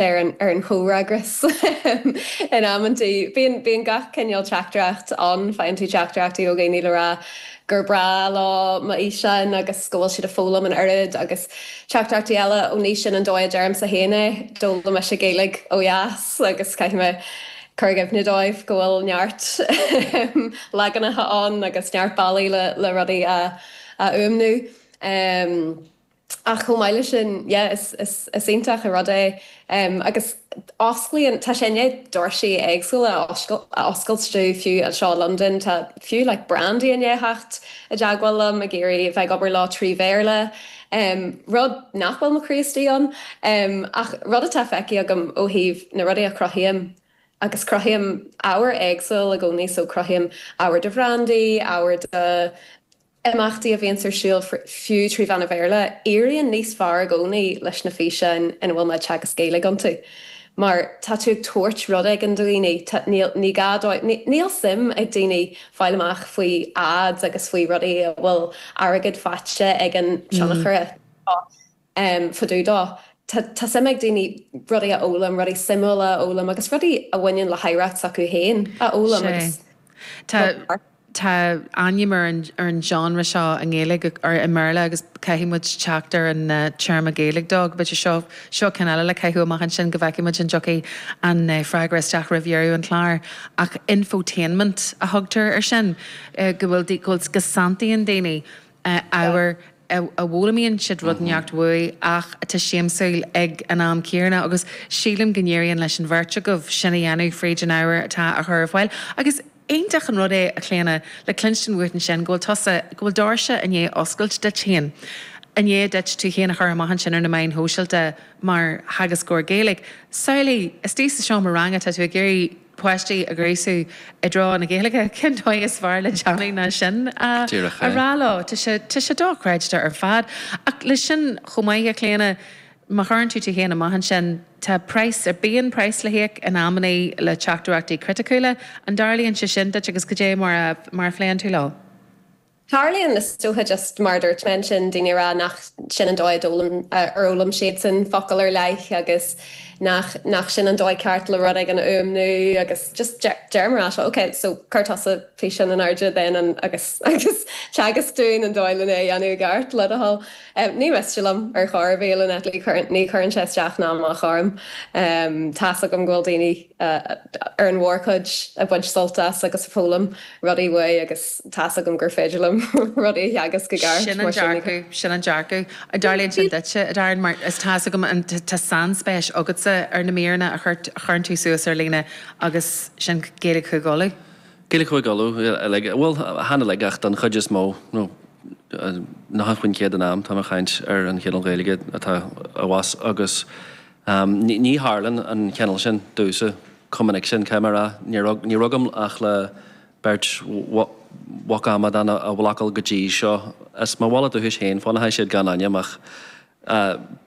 ar an chomhfhreagras in amanntaí. Bíonn gach cineál teachtaireacht ann. Faigheann tú teachtaireachtaí ó dhaoine le rá gur breá leo mo fhíseáin agus go bhfuil siad ag foghlaim an oiread agus teachtaireachtaí eile ó ní sin an dóigh a deirimse féin é. D'fhoghlaim mise Gaeilge ó dheas agus caithfidh mé cur i gcuimhne dóibh go bhfuil neart leaganacha ann agus neart bealaí le rudaí a fhuaimniú. Ach chomh maith le sin, yeah, is, is, is iontach an rud é. em, agus osclaíonn, tá sé i ndiaidh doirsí éagsúla a oscail, a oscailt domh, fiú anseo i Londain, tá, fiú like brandaí i ndiaidh theacht i dteagmháil liom ag iarraidh a bheith ag obair leo trí Bhéarla, em, rud nach bhfuil mo chroí istigh ann. Em, ach rud atá feicthe agam ó thaobh na rudaí a chruthaím, agus cruthaím ábhar éagsúil i gcónaí, so cruthaím ábhar do bhrandaí, ábhar do, imeachtaí a bhíonns ar siúl fiú trí mheán an Bhéarla, éiríonn níos fearr i gcónaí leis na físeáin ina bhfuil mé ag teagasc Gaeilge iontu. Mar tá tú ag tabhairt rud éigin do dhaoine, tá, níl, ní gá dóibh, níl suim ag daoine fáil amach faoi ads agus faoi rudaí a bhfuil airgead faighte ag an tionchaire. em, fá dtaobh dó. Tá suim ag daoine rudaí a fhoghlaim, rudaí suimiúla a fhoghlaim agus rudaí a bhaineann le hoidhreacht s'acu féin a fhoghlaim agus Sea. Tá, tá ainm ar an, ar an genre seo i nGaeilge, or i mBéarla agus caithfidh muid teacht ar an téarma Gaeilge dó. Agus b'fhéidir seo, seo ceann eile le caitheamh amach ansin go bhfeicfidh muid an dtiocfaidh an freagra isteach roimh dheireadh an chláir. Ach infotainment a thugtar ar sin, go bhfuil, go bhfuil, go santaíonn daoine. ábhar a bhfoghlaimíonn siad rud inteacht uaidh ach atá siamsúil ag an am céanna agus sílim go n-éiríonn leis an bheirt agaibh sin a dhéanamh fríd an ábhar atá á chur ar fáil agus iontach an rud é, a Chlíodhna, le cluinstin uait ansin go bhfuil tusa, go bhfuil doirse i ndiaidh oscailt duit féin, i ndiaidh duit tú féin a chur amach ansin ar na meáin shóisialta mar theagascóir Gaeilge. Samhlaigh, istigh sa seomra ranga tá tú ag iarraidh. páistí a ghríosadh i dtreo na Gaeilge, cén dóigh is fearr le déanamh ná sin a rá leo? Díreach é. Tá sé, tá sé dochreidte ar fad. Ach leis sin chomh maith, a Chlíodhna, má chuireann tú tú féin amach ansin, tá praghas ar, bíonn praghas le híoc in amannaí le teachtaireachtaí criticiúla. An dtarlaíonn sé sin duit agus cad é mar a, mar a phléann tú leo? Tarlaíonn na suaitheadh just mar a dúirt mé ansin, daoine ag rá nach sin an dóigh a d'fhoghlaim, ar fhoghlaim siadsan focal ar leith agus nach, nach sin an dóigh ceart le rud éigin a fhuaimniú agus just deir, deirimse leo, ok, so cuir tusa físeán in airde then and agus, agus teagasc dúinn an dóigh len é a dhéanamh i gceart, le do thoil. Ní miste liom ar chor ar bith, Lynette, ní chuireann sé isteach ná amach orm, tá's agam go bhfuil daoine. ar an mhórchuid, ag baint sult as agus ag foghlaim rudaí uaidh agus tá's agam gur féidir liom rudaí a theagasc i gceart, mar sin ní. Sin an dearcadh, an dtarlaíonn sin duitse, a Darren, mar is tá's agam tá sainspéis agatsa ar na míreanna a chuireann tú suas ar líne agus sin Gaeilge Chúige Uladh. Gaeilge Chúige Uladh uilig, bhuel chan uilig ach don chuid is mó, nó nócha faoin chéad den am tá mé ag caint ar an chineál Gaeilge atá abhus agus Ámh, ní tharlann an cineál sin damhsa chomh minic sin, caithfidh mé a rá. Ní raibh agam ach le beirt bhocamadán a bhlocáil go dtí seo. As mo bhaile dúchais féin, fanfaidh siad gan ainm, ach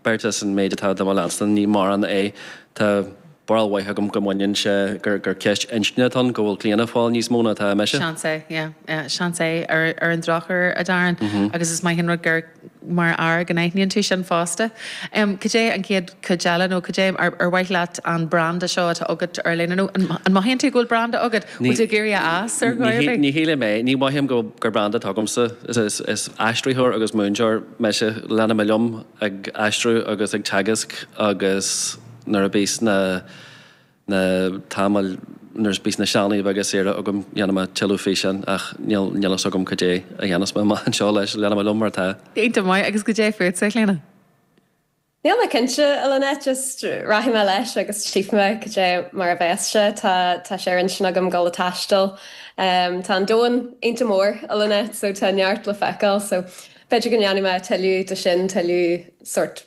beirt as an méid atá do mo leanstan, ní mórán é. Tá barúil mhaith agam go mbaineann sé gur ceist inscne atá ann, go bhfuil Clíona ag fáil níos mó ná atá mise. Seans é, yeah. Seans é, ar an drochuair, a Darren, agus is maith an rud gur. mar fhear, go n-aithníonn tú sin fosta. Cad é an chéad, cuid eile, nó cad é ar, ar mhaith leat an branda seo atá agat ar líne, nó an, an mothaíonn tú go bhfuil branda agat, an bhfuil tú ag iarraidh a fhás ar chor ar bith? Ní shílim é. Ní mhothaím go, gur branda atá agamsa. Is, is, is aistritheoir agus múinteoir mise. Leanfaidh mé liom ag aistriú agus ag teagasc agus nuair a bhíos na, na tamaill nuair a bíos na sealanna beaga saoire agam dhéanfaidh mé tuilleadh físeán ach níl níl fhios agam cad é a dhéanfas mé amach anseo leis. Leanfaidh mé liom mar atá. Iontach maith, agus cad é fútsa, a Chlíona. Níl mé cinnte, a Lynette, just rachaidh mé leis agus tchífidh mé cad é mar a bheas sé. Tá tá sé ar intinn agam dul ag taisteal. Tá an domhan iontach mór, a Lynette, so tá neart le feiceáil, so b'fhéidir go ndéanfaidh mé tuilleadh de sin, tuilleadh sórt.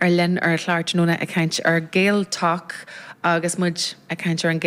ar líne ar an chlár tráthnóna ag caint ar GaelTok agus muid ag caint ar an.